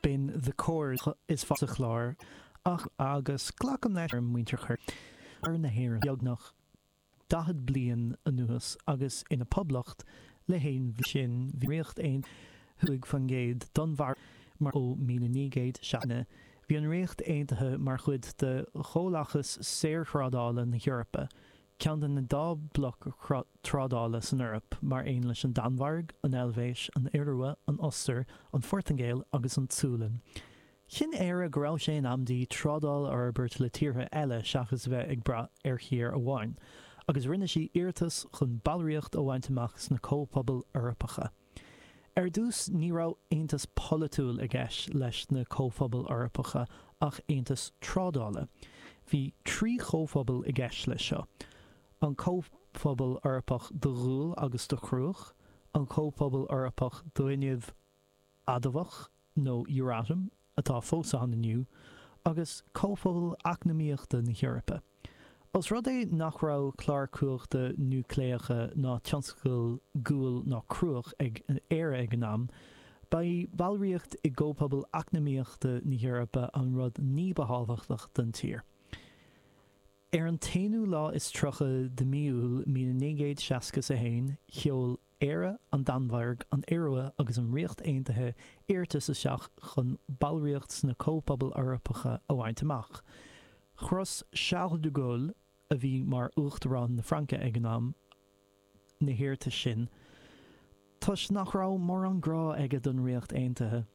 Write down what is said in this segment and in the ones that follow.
B'in The Corrs is fearr sa Chlár ach agus glacaim leis gur muintir thoir na hÉireann beagnach daichead bliain anuas agus ina Poblacht le haon bhliain sin bhí Ríocht Aontaithe cúig faoin gcéad d'onnmhairí mar ó míle naoi gcéad seasca bhí an Ríocht Aontaithe mar chuid de Chomhlachas Saorthrádála na hEorpa Ceann de na dá bloc trádála san Eoraip, mar aon leis an Danmhairg, an Eilvéis, an Iorua, an Ostair, an Phortaingéil agus an tSualainn. Chinn Éire go raibh sé in am di trádáil a fhorbairt le tíortha eile seachas a bheith ag brath ar thír amháin, agus rinne sí iarratas chun ballraíocht a bhaint amach sna Comhphobail Eorpacha. Ar dtús ní raibh aontas polaitiúil i gceist leis na Comhphobail Eorpacha ach aontas trádála. Bhí trí chomhphobal i gceist leis seo, an Comhphobal Eorpach do Ghual agus do Chruach, an Comhphobal Eorpach d'Fhuinneamh Adamhach nó Euratom atá fós ann inniu, agus Comhphobal Eacnamaíochta na hEorpa. Os rud é nach raibh clár cumhachta núicléacha ná tionscail guail ná cruach ag Éire ag an am, ba í ballraíocht i gComhphobal Eacnamaíochta na hEorpa an rud ní ba thábhachtach don tír. Ar an t-aonú lá is tríocha de Mí Iúil, míle naoi gcéad seasca 's a haon, sheol. Éire, an Danmhairg, an Iorua agus an Ríocht Aontaithe iarratas isteach chun ballraíocht sna Comhphobail Eorpacha a bhaint amach. Chros Charles de Gaulle, a bhí mar Uachtarán na Fraince ag an am, na hiarratais sin toisc nach raibh mórán grá aige don Ríocht Aontaithe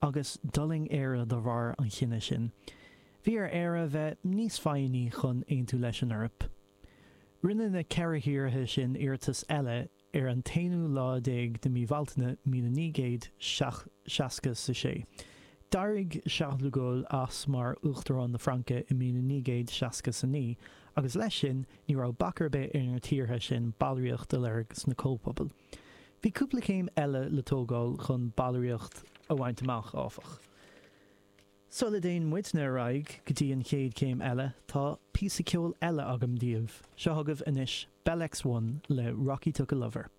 agus d'fhulaing Éire de bharr an chinnidh sin. Bhí ar Éire a bheith níos foighní chun aontú leis an Eoraip. Rinne na ceithre thíortha sin iarratas eile ar an t-aonú lá déag de mí Bhealtaine míle naoi gcéad seasca 's a sé. D'éirigh Charles de Gaulle as mar Uachtarán na Fraince i míle naoi gcéad seasca 's a naoi, agus leis sin, ní raibh bac ar bith ar na tíortha sin ballraíocht a lorg sna Comhphobail. Bhí cúpla céim eile le tógáil chun ballraíocht a bhaint amach, áfach. Sula dtéann muidne ar aghaidh go dtí an chéad chéim eile, tá píosa ceoil eile agam daoibh. Seo chugaibh anois Bell X1 le Rocky Took a Lover.